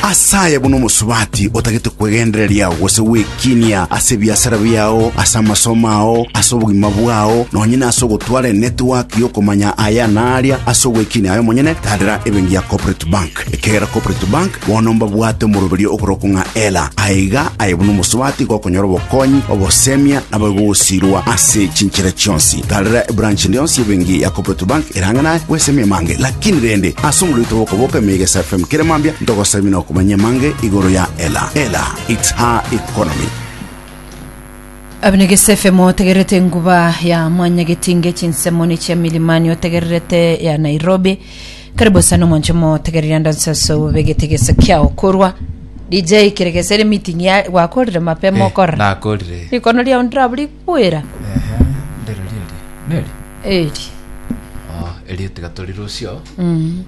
Ase aya buna omosubati otagete kwegendereria gose gwekinia ase ebiasara biao, ase amasomo ao, ase obogima bwao, nonye nase ogotwara enetwaki y'okomanya aya na aria ase ogwekinia aye omonyene, tadera ebenki ya Corporate Bank. Ekiagera Corporate Bank bono mbabwate omoroberio okorokwa ng'a Ela. Aiga aye buna omosubati gokonyora obokonyi, obosemia, nabo gosiirwa ase chinchera chionsi. Tadera ebranch eria yonsi y'ebenki ya Corporate Bank Erange naye gwesemia amange, lakini rende ase omorwete bw'okoboka emeyega ase FM kera mambia ntogosemia na okomanya amange igoro ya Ela. Ela, it's her economy. Abinigisa efemo otegererete enguba ya mwanyagetinge chinsemo ne chia milimani otegererete ya Nairobi karibu sana omonche mo otegereria ndansaso bobe getegesa kiao korwa DJ kiregesere meeting ya gwakorire mapema Eh, okorora nakorire. rikono riao ndiraburi Bwera. Ehe, ndero riria eri. Neri? Eri. Oh, erio tiga tori rusio. Mm.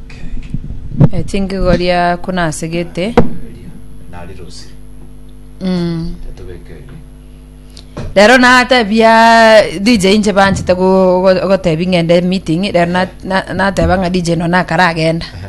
Okay. Eh, tinkigoria kuna asegete. Erio. Nari rusi. Mm. Tatobeke eri. Rero natebia DJ inche banchete go- go- gotebi ng'ende meeting, rero na- na- nateba ng'a DJ no nakaragenda. Ehe.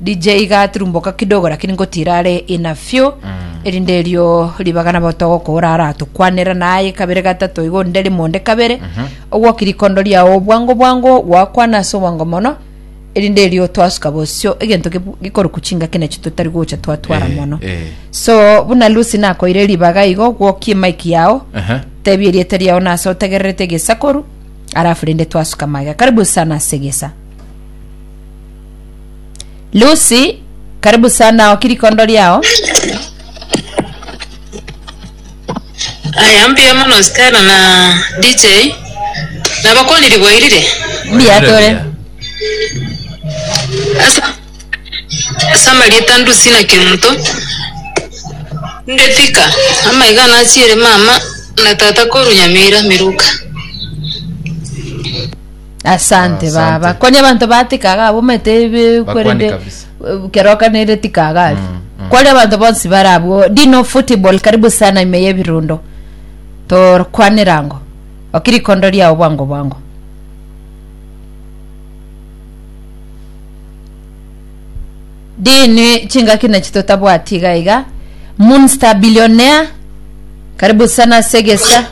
DJ iga tirumboka kidogo lakini ngotira are ina fio erinde erio ribaga nabo togokora ara tukwanera naye kabere gatato igo nde rimo nde kabere ogwoki rikondo riao bwango bwango gwakwana ase obwango mono erinde erio twasuka bosio egento gebu- gikoruku chingaki nacho totari gocha twatwara Eh, mono eh. so buna lucy nakoire ribaga igo gwokie mike yao Aha. tebi eriete riao nase otegererete egesakoru arafu rinde twasuka maega karibu sana segesa Lucy, karibu sana oki rikondo riao. Aya mbuya mono Stella na DJ nabakoni ribwairire Mbuya tore. ase ase amarieta ndusi na kemonto ndetika amaiga nachiere mama na tata koru nyamira miruka Asante Asante. baba konya abanto batikaga abo omanyete ebe- Bakwani kwerende kabisa. eh, kero okanere tikaga ari Mm, mm. kwari abanto bonsi bare abwo dino football karibu sana ime yebirundo torkwanera ngo okirikondo riao bwango bwango Dini chingaki nachi totabwati iga iga. Munster billionaire. Karibu sana Segesa.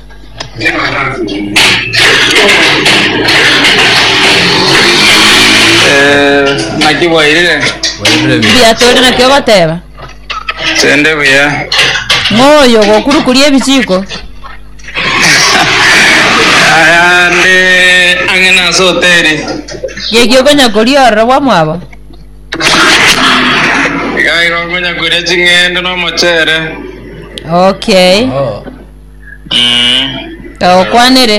Eh, naki bwairire. Biatori nakio goteba. Sende buya. Moyo gokurukuria ebichiko. Aya ndi ang'e nase hoteli. Geki okonya koria ororo bwamwabo. Iga iga okonya koria ching'ende na omochere. Okay. Mm. Kaokwanere.